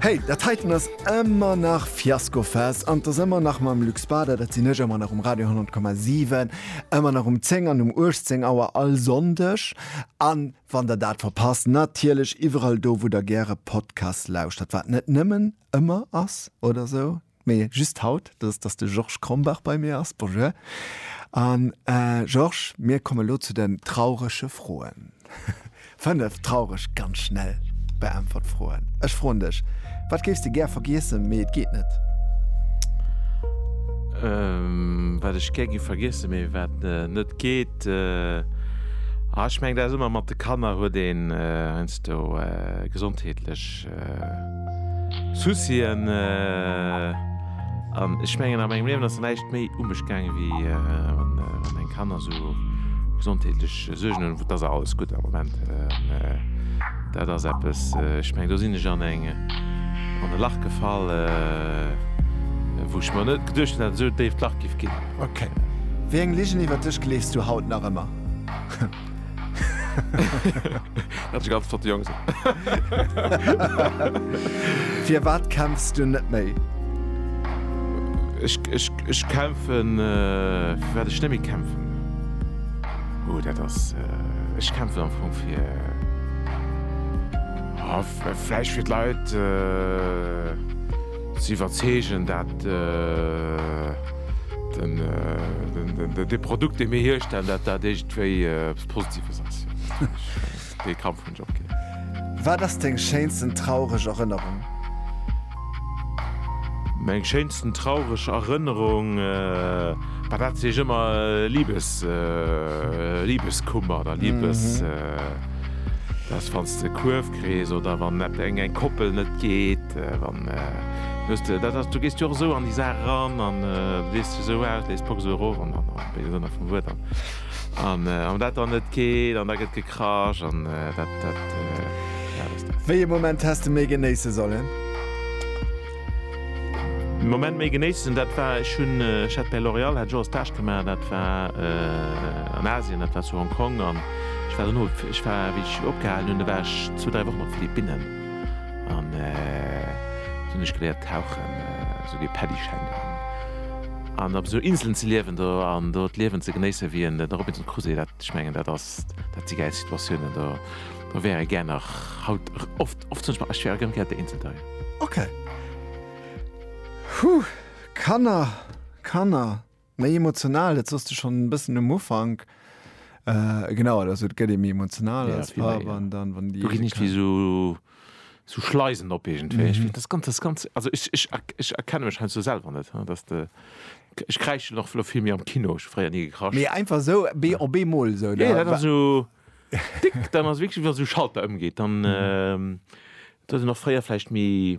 Hey, dat heiten ass ëmmer nach Fiaskofest an 't ass ëmmer nach mam Luc Spada, dat sinn ech, ëmmer nach um Radio 100,7, ëmmer nach um 10 an um 18 Auer all Sonndeg an wann der dat verpasst, natierlech iwwerall do, wou der gäre Podcasts lauschtert, wat net nëmmen ëmmer ass oder sou. Mee just haut, dat ass, dass de Georges Krombach bei mir ass. Bonjour. A Georges, mir komme lo zu den traurege Froen. Fënnef traureg, ganz schnell beäntwert Froen. Ech froen dech, Wat géifs de gär vergiessen, mee et geet net? Wat ech gär géif vergiessen, mee wat net geet? Ech mengen, dat ass ëmmer mat de Kanner, huet een heiansdo gesondheetlech. Soucien an ech mengen a mengem Liewen ass näischt méi u mech gaangen, wéi wann meng Kanner esou gesondheetlech Suergen hunn. Et ass alles gutt am Moment. Dat ass eppes, ech mengen do sinn ech an eng, an e Lach gefall, wou ech mer net geduecht hunn, dat et esou e déift Lach géif ginn. Ok. Wéi eng Ligen iwwert dech gleefs du haut nach ëmmer? Dat ass ganz flott Jongs. Firwat kämpfs du net méi? Ech kämpfen, fir wat ech net méi kämpfen? Oh dat ass, ech kämpfen am Fong fir, oh vläicht fir d'Leit ze iwwerzeegen, dat de Produkt dee mir hierstellen, dat dat eescht. Wéi eppes Positives ass dee Kampf hunn ech opginn. Wat ass deng schéinsten traureg Erënnerung? Meng schéinsten traureg Erënnerung, bah dat sehe ech ëmmer, Liebes, Liebeskummer oder Liebes, dass wann s de Kuerf kriss oder wann et eng eng Koppel net geet, wann, wëss de, dat ass, du gees jo och esou an déi Saach eran an du lees dech esou aus, lees d'Box esou erof an, am béise Sënn vum Wuert, an An wann dat dann net geet an da gëtt gekrasch an dat, dat, ja, dat ass dat. Wéi e Moment häss de méi genéisse sollen? De Moment méi genéissen, dat war, ech hunn, ech hat bei L'Oréal hat ech och e Stage gemaach, dat war an Asien, dat war zu Hong Kong an ech war dono, ech war, wéi ech opgehalen hunn, da war ech zwou, dräi Wochen op d'Philippinnen an do hunn ech geléiert tauchen, esou wéi e Paddyschäin geholl. An op esou Inselen ze liewen do an do d'Liewen ze genéissen, wéi en Robinson Crusoe, dat, ech mengen, dat ass, dat si gäil Situatiounen. Do, do wär ee gär nach haut oft, oft zumindest, ech wär och gär ëmgéiert der Insel dei. Ok. Huh! Kanner, Kanner, méi emotional, dat sooss de schonn e bëssen um Ufank. Genau, also et gëtt ee méi emotional als Papp an dann, wann déi. Do ginn ech wéi esou. sou Schleisen op iergendwéi. Ech ginn ganz, ganz, ganz, also ech, ech, ech erkenne mech heiansdo selwer net, hein, dass de, ech kräischen och lo vill méi am Kino, ech hu fréier ni gekracht. Mee einfach sou bee op eemol sou, da. Jo, dat ass sou tick, dann ass wierklech, wa sou Schalter ëmgeet, dann, dat hunn ech och fréier vläicht méi.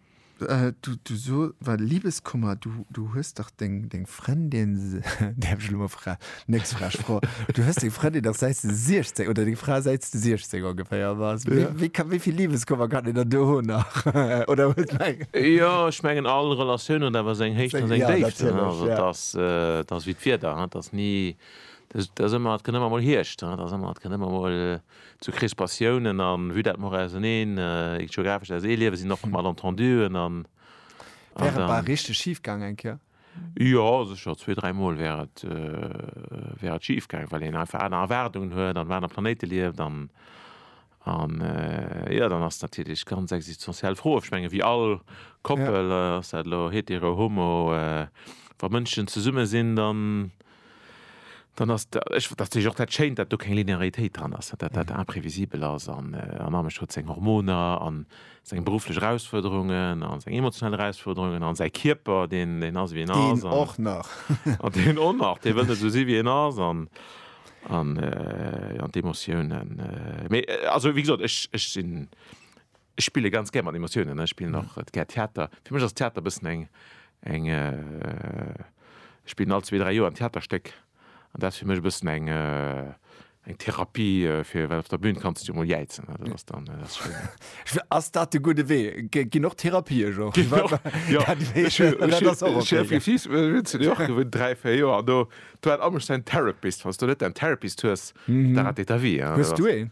Du so, wat Libeskummer, du hues dach deng Frëndin, däerf ech elo mol fra, nächst Fra, ech fro, du hues deng Frëndin dach säits de 16 oder deng Fra säits de 16 ongeféier, wa wéi ka wéi vill Libeskummer kann een dann do hunn nach oder huet meng? Jo, ech mengen all Relatioun huet awer seng Héichten a seng Déiften, also et ass et ass wéi d'Wieder, et ass ni, et ass ëmmer, et kënnt ëmmer mol Hierscht, et ass ëmmer, et kënnt ëmmer mol. Zu Crispatiounen an vue d'admore auserneen, eent geographesch aus ee Liewe sinn och Malentenduen an. Wär et bal richteg schif gaang eng Kéier? Jo, sécher, zwee, dräi Mol wär et, wär et schif gaang, well een einfach aner Erwaardungen huet an op anere Planéite lieft an, an, jo, dann ass natierlech ganz existenziell Fro. Ech menge wéi all Koppel, ass dat elo hetero, homo, wa Mënschen zesumme sinn, dann. dann ass da, ech, dat sech och dat schéint, dat do keng Linearitéit dran ass, dat dat imprévisibel ass an an Amesch huet seng Hormoner an seng berufflech Erausfuerderungen an seng emotionell Erausfuerderungen an säi Kierper, deen deen ass wéi en ass. Deen och nach. An deen och nach, dee wëll net esou si wéi en ass an an an d'Emotiounen. Mee also wéi gesot, ech ech sinn. Ech spille ganz gär mat Emotiounen, ech spillen och gär Theater. Fir mech ass Theater e bëssen eng, eng, ech spillen all zwee, dräi Joer en Theaterstéck an dat ass fir mech e bëssen eng, eng Therapie fir, well op der Bün kanns du emol jäizen, dat ass dann, dat ass schéin. Ass dat de gudde Wee? Ginn och Therapië jo. Dräi, véier Joer do hat all mech säin Therapist. Wann s du net däin Therapist hues, da ratéiert ta vie. Hues du een?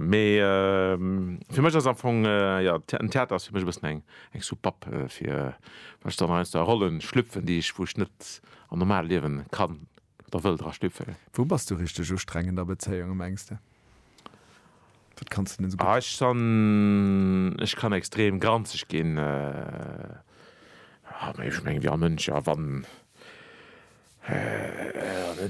Mee fir mech ass am Fong, jo, den Theater ass fir mech e bëssen eng Soupapp fir, wann ech dann aus der Rolle schlüpfen, déi ech, wou ech net am normale Liewen kann oder wëll dra schlüpfen. Wou bass du richteg u streng an der Bezéiung, mengs de? Wat kanns de net esou gutt? Ech san, ech kann extrem granzeg ginn. Ech mengen, wéi all Mënsch, a wann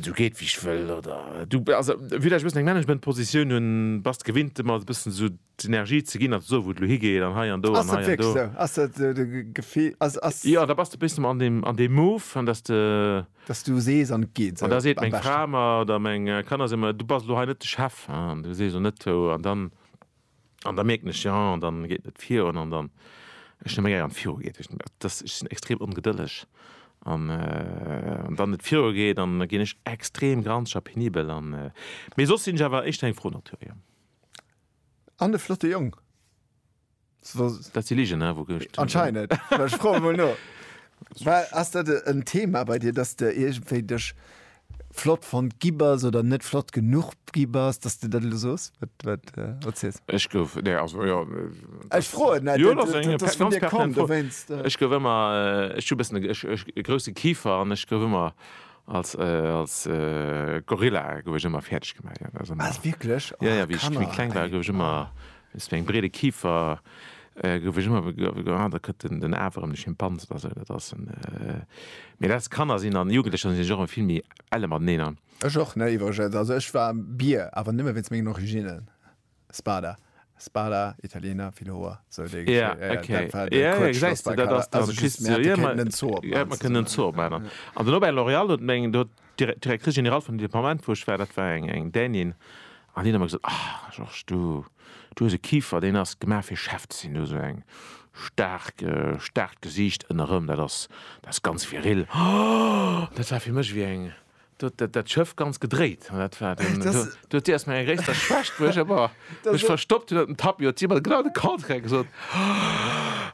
Du geet wéi ech wëll oder du also village e bëssen eng Management Positioun hunn, bass de gewinnt ëmmer e bëssen esou d'Energie ze ginn a ze soen wou et elo higeet an hei an do an hei an do. Ass dat wierklech esou? Ass dat de Gefill ass ass. Jo da bass de e bëssen an deem an deem Move an dass de. Dass du sees an et geet esou am beschten. An da seet meng Fra mer oder meng Kanner si mer du bass elo hei net de Chef an du sees elo net an dann. An da mierken ech, jo, an dann geet net virun, an dann, ech hunn e méi gär wann et viru geet, ech sinn extrem ongedëlleg, an wann et viru geet, dann ginn ech extrem granzeg a penibel, an, mee soss sinn ech awer éischter eng fro Natur, jo. An e flotte Jong. Dat si Ligen, wou gëtt et. Anscheinend, ech froen emol no. War, ass dat en Thema bei dir, dass de iergendwéi dech flott fonnt gi bass oder net flott genuch gi bass, datt s de dat elo sos, wat wat äh, wat s de. Ech gouf, nee, also jo, Ech dat, froen, mä jo, dat ass eng dat ass vun ganz dir komm, pertinent Fro. dowéinst. Ech gouf ëmmer, ech hu e bëssen e, ech, ech, e grousse Kifer an ech gouf ëmmer als, als Gorilla gouf ech ëmmer fäerdeg gemaach, jo, dat ass ëmmer, Wat, wierklech? Jo, Oh, jo, wéi ech, wéi Kanner, kleng war, ey, gouf ech ëmmer, oh. Weess wéi eng breede Kifer gouf ech ëmmer begrëff, ah da kënnt den Aaf erëm, de Schimpans oder sou, dat ass en, mee dat Kanner sinn an Jugendlecher sinn ech och vill méi elle mateneen. Ech och, ne iwwregens, also ech war Bier, awer nëmme wéinst mengen Originnen, Spada, Spada, Italiener, vill Hoer, sou déi Geschicht, jo jo, dat war de Kuerzschlossberg, also just mir haten kënnen en Zoo opmaachen, an den Aubert L'Oréal huet meng, do huet. D'Directrice générale vun dem Departement, wou ech war, dat war eng Dänin, an déi huet ëmmer gesot, Ah, Georges, du hues e Kifer, deen ass gemaach fir Chef ze sinn, du hues esou eng staark, staarkt Gesiicht ënnerëm, dat ass, dat ass ganz viril. Dat war fir mech ewéi eng, do huet dat Schëff ganz gedréit. Dat war, do huet si erst meng gréisster Schwächt, wou ech, Mech verstoppt hun op dem Tapis, huet si mat genau de Contraire gesot,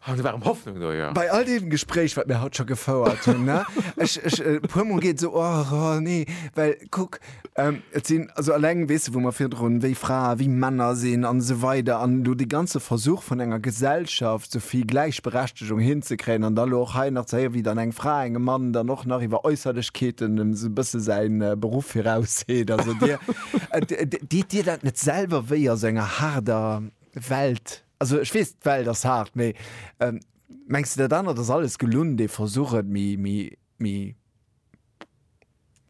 an do war rem Hoffnung do, jo. Bei all deem Gespréich, wat mir haut scho gefouert hunn, ne, ech, ech, e puer Mol geet esou, oh, oh, nee, well kuck, et sinn, also alleng, weess de, wou mer virdrun, wéi Fraen, wéi Männer sinn an esou weider, an elo dee ganze Versuch vun enger Gesellschaft, sou vill Gläichberechtegung hinzekréien, an da elo och hei nach ze héieren, wéi dann eng Fra engem Mann dann och nach iwwer Äusserlechkeeten esou e bësse säi Beruff virausseet, also Dir. Deet dir dat net selwer wéi a sou enger haarder Welt? Also ech weess, d'Welt ass haart, mee mengs de dat anert ass alles gelunn, dee Versuch et méi,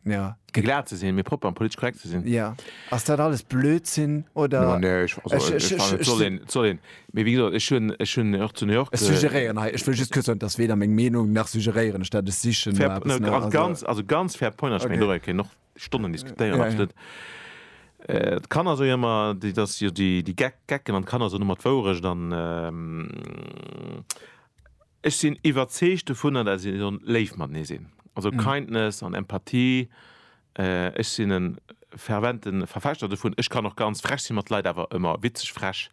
ja. Glat ze sinn, méi propper an politesch korrekt ze sinn? Jo. Ass dat alles Blödsinn oder? No nee, ech, also ech fannen et soll een, et soll een, mee wéi gesot ech hunn, ech hunn och zu New York. Ech suggeréieren hei, ech wëll just kuerz soen, et ass weder meng Meenung nach suggeréieren ech dat, ech sichen no eppes. No, also ganz, also ganz fair point, ass meng Logik, hien och. Stonnen diskutéieren ass net. D'Kanner soe ëmmer, dat ass jo déi Gecken an d'Kanner soen ëmmer d'Wourecht an ech sinn iwwerzeegt dovunner, dat si sollen léif matenee sinn. Also Kindness an Empathie, ech sinn e fervente Verfechter dovun. Ech kann och ganz frech si mat Leit, awer ëmmer witzeg frech.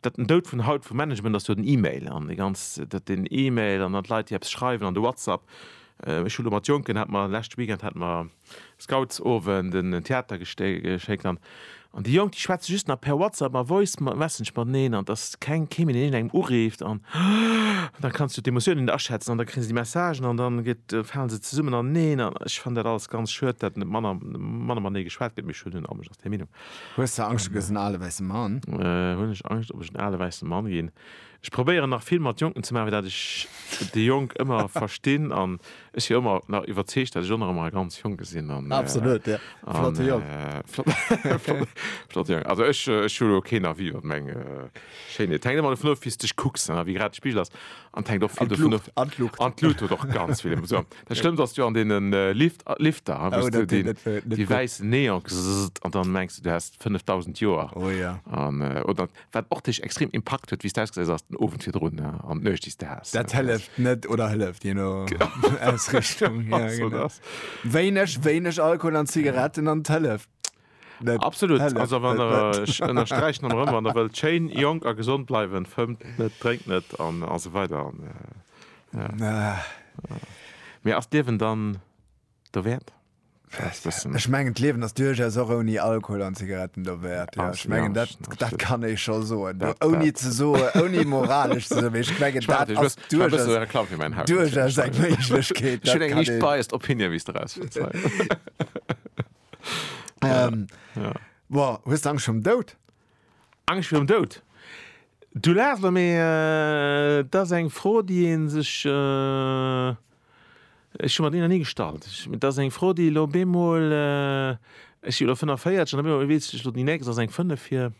Datt den Doud vun haut vum Management ass jo den Email an déi ganz, datt den Email an dann d'Leit déi eppes schreiwen an de Whatsapp. Ech hu lo mat Jonken, hat mer leschte Weekend hat mer Scoutsowend en Theater geschéckt an an déi Jonk déi schwätze just nach per Whatsapp ma Voice Message mateneen an et ass keng kee méi deen een engem ureeft an da kanns du d'Emotioune net aschätzen an da kréie se déi Messagen an dann gëtt falen se zesummen aneneen an ech fannen dat alles ganz schued dat net manner manner matenee geschwat gëtt mee ech hunn hunn awer just déi Meenung. Hues de Angscht, du gëss en ale wäisse Mann? Hunn ech Angscht, ob ech en ale wäisse Mann ginn? Ech probéieren nach vill mat Jonken ze maachen, fir dat ech déi Jonk ëmmer verstinn an ech si ëmmer nach iwwerzeegt, dat ech och nach ëmmer e ganz Jonke sinn. Absolut, jo. Flotte Jong. Flotte Jong. Also ech hu elo keen Avis iwwer meng Schéinheet. Hänkt ëmmer dovun of, wéi s de dech kucks, wéi grad de Spigel ass. An d'hänkt och vill dovun of. An d'Luucht. An d'Luucht huet och ganz vill. Dat schlëmmt ass jo an deene Lifter, wou s du déi wäiss Neon gsësst an dann mengs du, du häss 5000 Joer. Oder wat och dech extrem impakt huet, wéi s du ausgesäis ass den Owend virdrun an d'Nuecht, déi s du has. Dat hëlleft net oder hëlleft, je no Ausrichtung. Wéineg Alkohol an Zigaretten an d'hëlleft. Absolut ech ënnersträichen an erëm wann der wëllt schéin jonk a gesond bleiwen, fëmmt net, drénkt net an esou weider an mee ass d'Liewen dann dowäert? Ech mengen d'Liewen ass duerchaus och ouni Alkohol an Zigaretten dowäert, jo ech mengen dat dat kann ee scho soen ouni ze soen, ouni moralesch ze soen, mee ech mengen dat ass duerchaus eng Méiglechkeet. Ech hunn eng liicht biased Opinion wéi s de eraus. Ähm, ja. Boah, hues Angst vum Dout? Angst vum Dout? Du laachst lo, mee äh, dat ass eng Fro, déi een sech äh, ech hu mer déi nach ni gestallt. Ech, dat ass eng Fro, déi lo bemol äh, ech si lo 45 an bemol weess ech lo, déi nächst ass eng 5 fir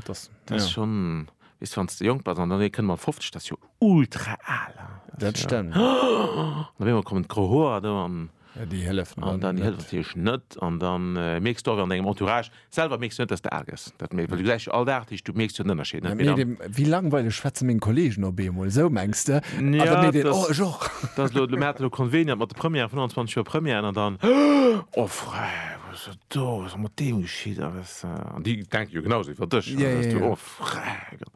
Das ass schonn, weess de, wann s de jonk bass an dann ee kënnt mat 50, dat ass jo ultra al. Dat stëmmt. Op eemol kommen d'gro Hoer do an. Ja, déi hëllefen dann net. An dann hëlleft natierlech net an da mierks de och an dengem Entourage selwer, mierks de net, dass de al gëss. Dat mierks, well du gesäis jo all Dag déi Stuff, mierks du den Ënnerscheed net méi dann. Wéi langweileg schwätze meng Kolleegen op eemol, esou mengs de? A da mierkt een, oh, ech och. Dass elo, mir haten elo conveniert mat de Premièren, 25 Joer Premièren an dann, oh, frère, wat ass dat do, wat ass mat deem geschitt? An déi denken jo genau sou wéi ech, dass du do ofregen.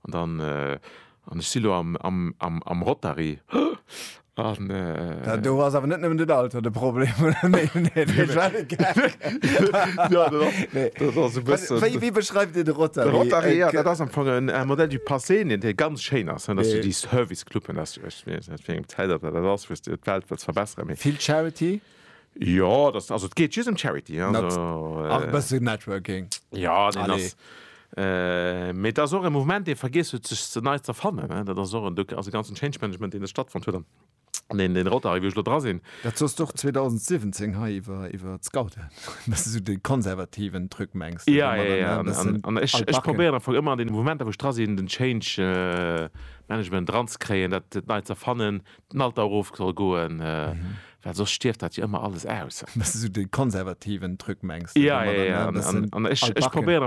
An dann, an ech si lo am Rotary. Do ass awer net nëmmen den Alter de Problem, oder? Nee, nee, dat war e Gag. Jo, dat ass, dat ass e bëssen. Wéi, wéi beschreift Dir de Rotary? De Rotary, jo, dat ass am Fong en modèle du passé, deen dee ganz schéin ass, dass du déi Service-Cluben, dass du, ech weess net, wéi eng Zäit dat ass, wou s de d'Welt wëlls verbesseren, mee. Vill Charity? Jo das also et geet just em Charity ach e bësse Networking jo deen ass äh mee et ass och e Mouvement dee vergiess huet sech ze nei z'erfannen ne dat ass och en Duck also ganzen Change Management deen do stattfonnt huet an deen deen Rotary wou ech elo dra sinn. Dat soss d'och 2017 hei iwwer iwwer d'Scouten dass de sou de konservativen Truc mengs jo jo jo an an an ech ech probéieren am Fong ëmmer an deene Mouvementer wou ech dra sinn den Change Management dranzekréien dat dat nei z'erfannen den Alter erof soll goen, well soss stierft dat jo ëmmer alles aus. Dass de sou de konservativen Truc mengs. Jo, jo, jo, an ech probéieren.